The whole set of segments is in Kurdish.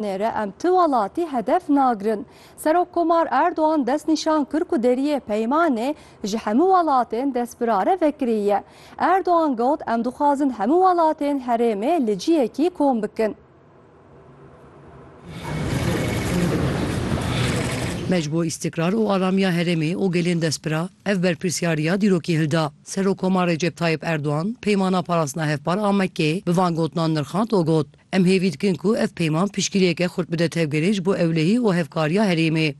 Nêre em ti welatî hedef nagirin. Serokkomar Erdogan destnîşan kir ku deriyê peymanê ji hemû welatên destbirare vekirî ye. Erdogan got em dixwazin hemû welatên herêmê li ciyekî kom bikin. Me ji bo îstikrar û aramiya herêmê û gelên destbira ev berpirsyariya dîrokî hilda. Serokkomar Recep Tayyip Erdogan peymana parastina hevpar a Mekkeyê bi van gotinan nirxand û got, Em hêvî dikin ku ev peyman piştgiriyeke xurt bide tevgerê ji bo ewlehî û hevkariya herêmê.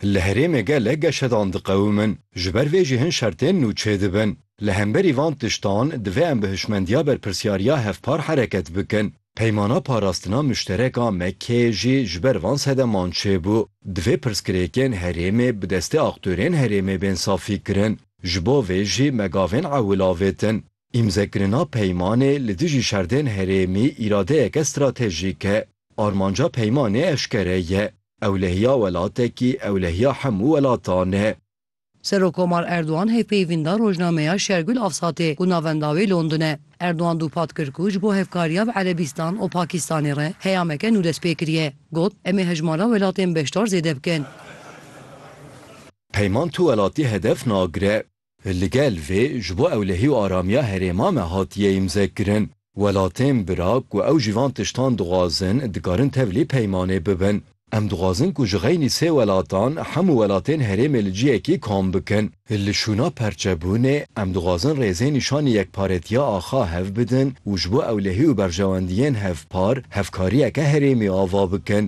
Li herêmê gelek geşedan diqewimin, ji ber vê jî hin şertên nû çêdibin. Li hemberî van tiştan divê em bi hişmendiya berpirsyariya hevpar hereket bikin. Peymana parastina muşterek a MK jî ji ber van sedeman çêbû. Divê pirsgirêkên herêmê bi destê aktorên herêmê bên safîkirin. Ji bo vê jî me gavên ewil avêtin. Îmzekirina peymanê li dijî şerdên herêmî îradeyeke stratejîk e. Armanca peymanê eşkere ye. Ewlehiya welatekî ewlehiya hemû welatan e. Serokkomar Erdogan hevpeyvîn da rojnameya Şergul Avsatê ku navenda wê London e. Erdogan dûpat kir ku ji bo hevkariya bi Erebîstan û Pakistanê re heyameke nû dest pê kiriye. Got, Em ê hejmara welatên beşdar zêde bikin. Peyman tu welatî hedef nagire. Li gel vê ji bo ewlehî û aramiya herêma me hatiye îmzekirin. Welatên bira ku ew jî van tiştan dixwazin dikarin tevlî peymanê bibin. Em dixwazin ku ji xeynî sê welatan hemû welatên herêmê li ciyekî kom bikin. Li şûna perçebûnê em dixwazin rêzên nîşanî yekparetiya axa hev bidin û ji bo ewlehî û berjewendiyên hevpar hevkariyeke herêmî ava bikin.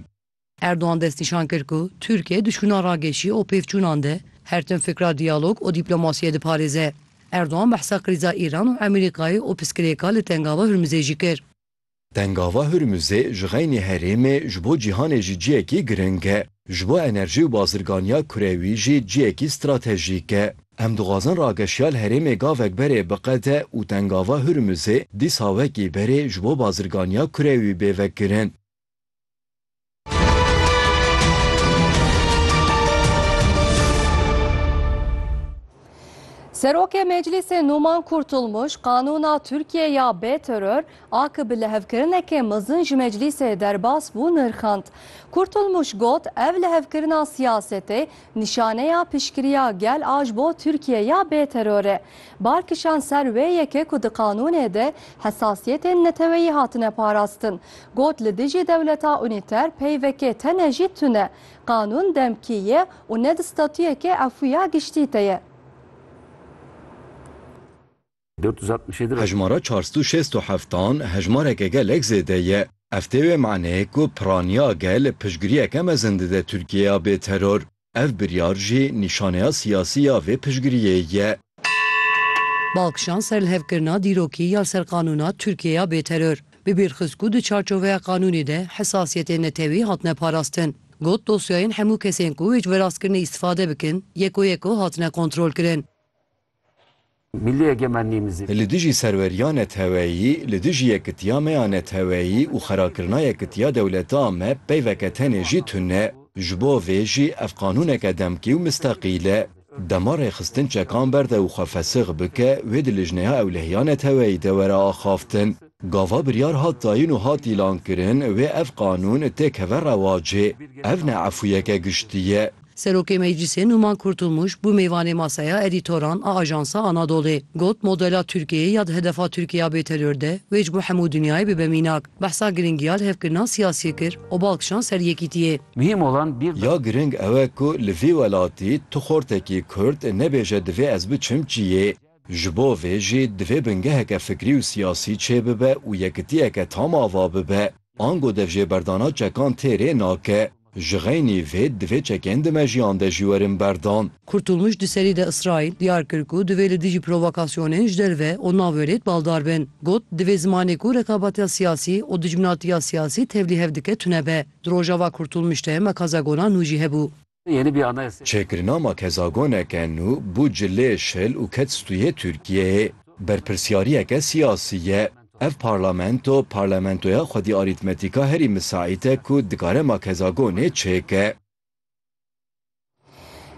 Erdogan destnîşan kir ku Tirkiye duşkuna rageşî û pêvçûnan de her tim fikra diyalog û dîplomasiyê diparêze. Erdogan behsa krîza Îran û Amerîkayê û piskirêka li Tengava Hurmizê jî kir. Tengava Hurmizê ji xeynî herêmê ji bo cîhanê jî ciyekî giring e. Ji bo enerjî û bazirganiya kurewî jî ciyekî stratejîk e. Em dixwazin rageşiya li herêmê gavek berê biqede û Tengava Hurmizê dîsa wekî berê ji bo bazirganiya kurewî bê vekirin. Serokê Meclîsê Numan Kurtulmuş qanûna Tirkiye ya bê teror a ki bi lihevkirinekê mezin ji meclîsê derbas bû nirxand. Kurtulmuş got ev lihevkirina siyasetê Nîşaneya piştgiriya gel a ji bo Tirkiye ya bê teror e. Bar kişand ser wê yekê ku di qanûnê de hesasiyetên neteweyî hatine parastin. Got li dijî dewleta unîter peyvekê tene jî tune. Qanûn demkî ye û ne di statuyekê efûya giştî de ye. Hejmara çar sed û şêst û heft an hejmareke gelek zêde ye. Ev tê wê maneyê ku piraniya gel piştgiriyeke mezin dide Tirkiyeya bê teror. Ev biryar jî nîşaneya siyasî ya vê piştgiriyê ye. Balkişan ser li hev kirina dîrokî ya li ser qanûna Tirkiyeya bê teror, bi bîr xist ku di çarçoveya qanûnê de hesasiyetên netewî hatine parastin. Got dosyayên hemû kesên ku wê ji verastikirinê îstifade bikin yeko yeko hatine kontrolkirin. Milli egemenlîmizê. Li dijî serweriya neteweyî, li dijî yekitiya me ya neteweyî û xerakirina yekitiya dewleta me peyveke tenê jî tune ye. Ji bo vê jî ev qanûneke demkî û mistaqîl e. Dema rêxistin çekan berde û xwe fesix bike, wê di lijneya ewlehiya neteweyî de were axaftin. Gava biryar hat dayin û hat îlankirin, wê ev qanûn têkeve rewacê. Ev ne efûyeke giştî ye. Serokê Meclîsê Numan Kurtulmuş bû mêvanê masaya edîtoran a Ajansa Anadolê. Got, Modela Tirkiyeyê ya di hedefa Tirkiyeya bêteror de wê ji bo hemû dinyayê bibe mînak. Behsa girîngiya li hevkirina siyasiyê kir û bal kişand ser yekîtiyê. Muhîm olan bîr Ya girîng ew e ku li vî welatî tu xortekî Kurd nebêje divê ez biçim ciyê. Ji bo vê jî divê bingeheke fikrî û siyasî çêbibe û yekitiyeke tam ava bibe. Ango devjêberdana çekan tê rê nake. Ji xeynî vê divê çekên di mejiyan de jî werin berdan. Kurtulmuş di serî de Îsraîl diyar kir ku divê li dijî provokasyonên ji derve û navwêrêd baldar bin. Got, Divê zimanê ku rekabatiya siyasî û dijminatiya siyasî tevlî hev dike tune be. Di rojava Kurtulmuş de mekaza Golan nû jî hebû. Çêkirina makezagoneke nû bû ci lê şil û ket stûyê Tirkiyeyê. Berpirsyariyeke siyasî ye. Ev parlamento, parlamentoya xwedî arîtmetîka herî misaît e ku dikare makezagonê çêke.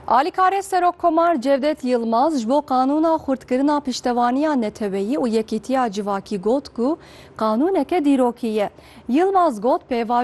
Alîkarê Serokkomar Cevdet Yilmaz ji bo qanûna xurtkirina piştevaniya neteweyî û yekîtiya civakî got ku qanûneke dîrokî ye. Yilmaz got pêvajoya